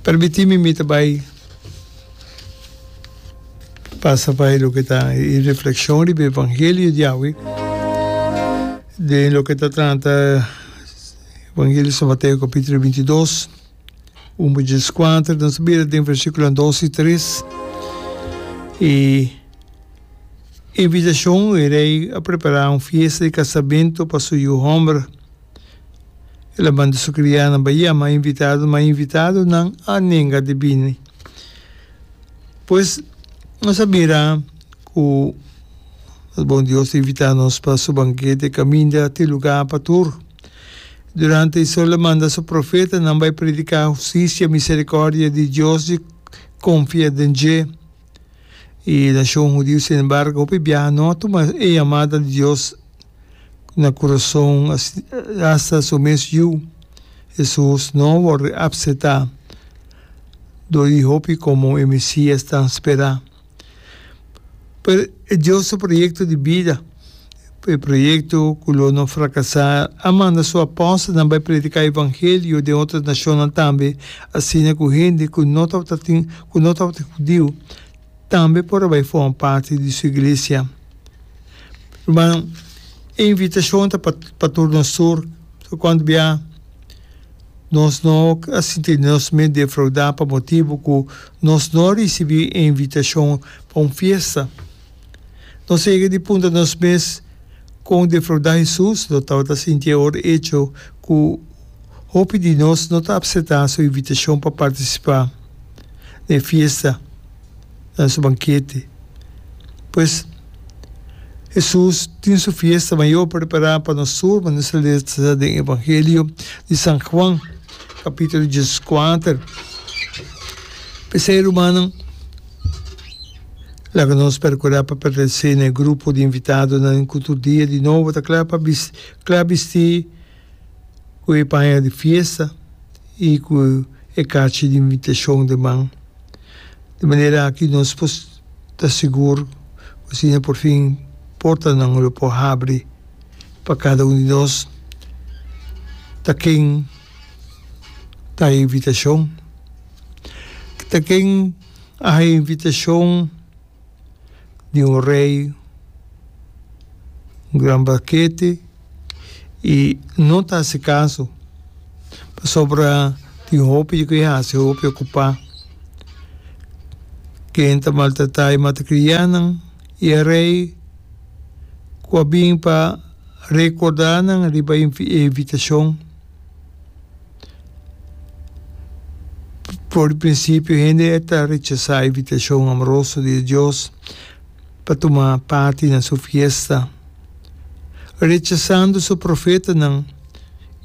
Permitimi mi ta bai pasa pa e loke ta e reflekshon riba e evangelio di awe, den loke ta trata evangelio di San Mateo kapitulo binti i dos, un pa djes i kuater. Nos ta bira den versikulonan dos i tres, e invitashon, e rei a prepara un fiesta di kasamento pa su yu homber. El a manda su krianan pa yama invitado, ma invitadonan a nenga di bini. Pues, nos a mira ku nos bon Dios a invitá nos pa su bankete kaminda te lugá pa tur. Durante e so el a manda su profetanan bai prediká hustisia, miserikòrdia di Dios di konfia den dje. E nashon hudiu, sin embargo, hopi biaha no a tuma e yamada di Dios na kurason, hasta su mes Yu, Hesus, no a wòrdu reapsetá dor e hopi komo e Mesías tan spera. Pero e Dios su proyekto di bida. E proyekto ku lo no frakasá a manda su apòstelnan bai prediká evangelio den otro nashonnan tambe, asina ku hende ku no tabata tin ku no tabata hudiu tambe por a bai forma parti di su iglesia. Rumannan, e invitashon ta pa pa tur nos tur, so kònt bia nos no a sinti nos mes defraudá pa motibu ku nos no a risibí e invitashon pa un fiesta. Nos sigui di puntra nos mes kon defrauda Hesus lo tabata sinti e ora echo ku hopi di nos no ta apseta su invitashon pa partisipa na e fiesta, na su bankete. Pues, Hesus tin su fiesta mayor prepará pa nos tur, ma nos ta lesa den Evangelio di San Juan, kapitulo dieskuater. P'esei, rumannan. Laga nos percurá pa pertencé na e grupo di invitadonan cu tur dia di nobo ta cla pa cla bistí cu e paña di fiesta i cu e cachi di invitacion den man. Di manera aki nos por ta sigur cu asina porfin portanan lo por habri pa cada un di nos ta ken ta e invitacion, ta ken. A hay invitacion di un rey, un gran banquete, y no ta haci caso, pasobra tin hopi di cu e haci, hopi e cupa. Ken ta maltrata e matacrianan y e rey cu a bin pa recorda nan riba e invitacion. Por di prinsipio, hende e ta rechasá e invitashon amoroso di Dios pa tuma parti na su fiesta, rechasando su profetanan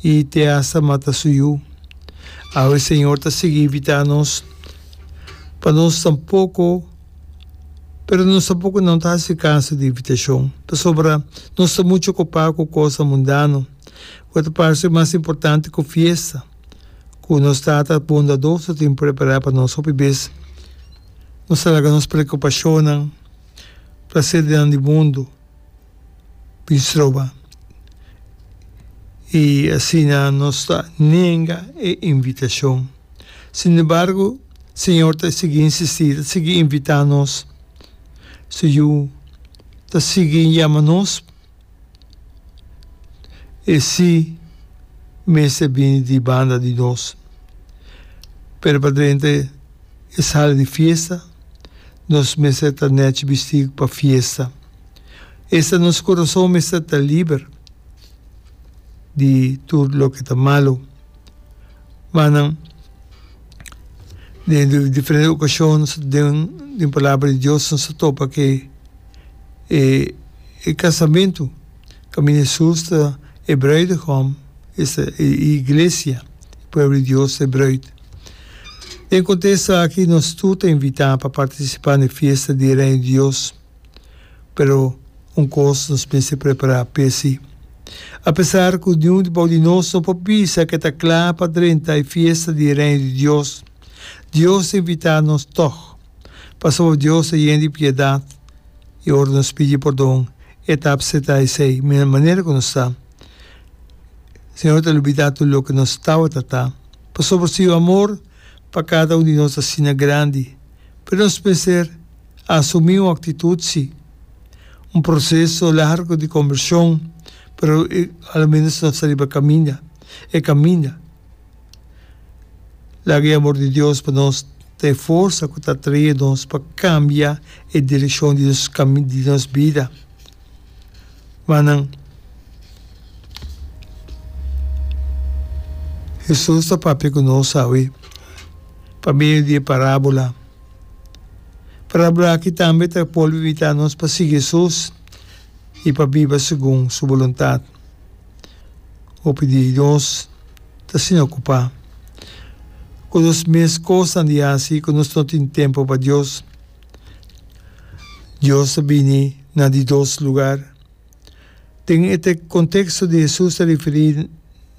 i te asta mata su yu. Awe Señor ta sigui invitá nos, pa nos tampoko, pero nos tampoko no ta hasi kaso di e invitashon, pasobra nos ta muchu okupá ku kosnan mundano. Cu ta parce mas importante cu fiesta cu nos tata bondadó so tin prepara pa nos hopi bez. Nos ta laga nos preocupacionnan, placernan di mundo bin stroba y asina nos ta nenga e invitacion. Sin embargo, Señor ta sigui insisti, ta sigui invita nos. Su Yu ta sigui yama nos. E si mester bini di banda di nos. Pero pa drenta e sala di fiesta nos mester ta nèchi bistí pa fiesta. Esta nos kurason mester ta liber di tur loke ta malu. Wak nan den diferente okashon den palabra di Dios nos ta topa ke. e e casamentu caminda Jesús ta e bruidegom esta e iglesia e pueblo di Dios ta e bruid. Den conte esaki nos tur ta invita pa participa n'e fiesta di e Reino di Dios, pero un cos nos mester prepara p'e si. Apesar cu niun di bou di nos no por bisa ke ta cla pa drenta e fiesta di e Reino di Dios, Dios ta invita nos toch. Pasobra Dios ta yen di piedat, i ora nos pidi pordon, e ta apseptá esei mina manera ku nos ta. Señor ta lubidá tur loke nos tawata ta. Pasobra Su amor pa kada un di nos asina grandi, pero nos mester a asumí un aktitut si. Un proseso largu di kombershon, pero aloménos nos ta riba kaminda, e kaminda. Laga e amor di Dios pa nos ta e forsa ku ta atrae nos pa kambia e direkshon di nos kami di nos bida. Mannan, Hesus ta papia ku nos awe pa medio di e parábola. Parábola aki tambe ta bolbe invitá nos pa sigui Hesus i pa biba segun su boluntat. Hopi di nos ta sin ocupá cu nos mes cosnan di haci cu nos no tin tempo pa Dios. Dios ta bini na di dos lugar. Den e contexto di Hesus ta riferí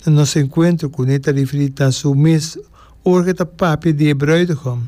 na nos encuentro cune ta riferí na su mes ora cu e ta papia di e bruidegom.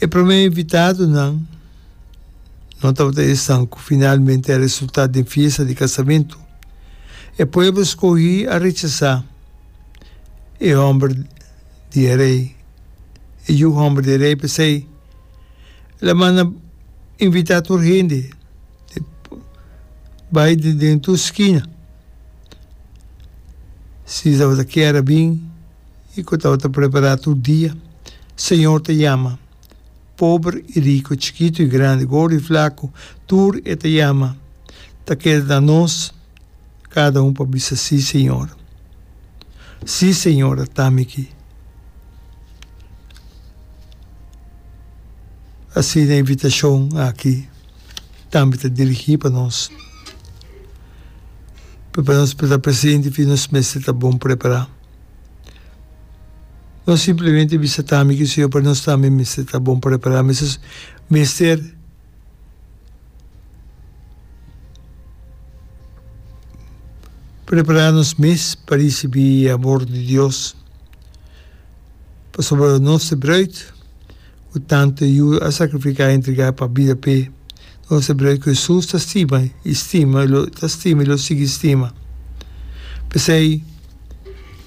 E prome invitadonan no tabata esan ku finalmente a resultá den fiesta di kasamentu. E pueblo skohí a rechasá e hòmber di e rei, e yu hòmber di e rei, p'esei laman a invitá tur hende bai den tur skina si tabata kier a bin. i ku tabata prepará tur dia. Señor ta yama, pober i riku, chikitu i grandi, gordu i flaku, tur e ta yama. Ta keda na nos kada un pa bisa, Sí, Señor. Sí, Señor, a tami ki. Asina e invitashon aki tambe ta dirigí pa nos. P'e pa nos tabata presenti fin nos mester ta bon prepará. No simplemente bisa ta mi kiseyo pero nos tambe mester ta bon prepará, mester mester prepará nos mes pa risibí e amor di Dios, pasobra nos e brùit ku tantu yuda a sakrifiká i entregá e papbida p'e, nos e brùit ku Hesus ta stima i stima i lo ta stima i lo sigui stima. P'esei.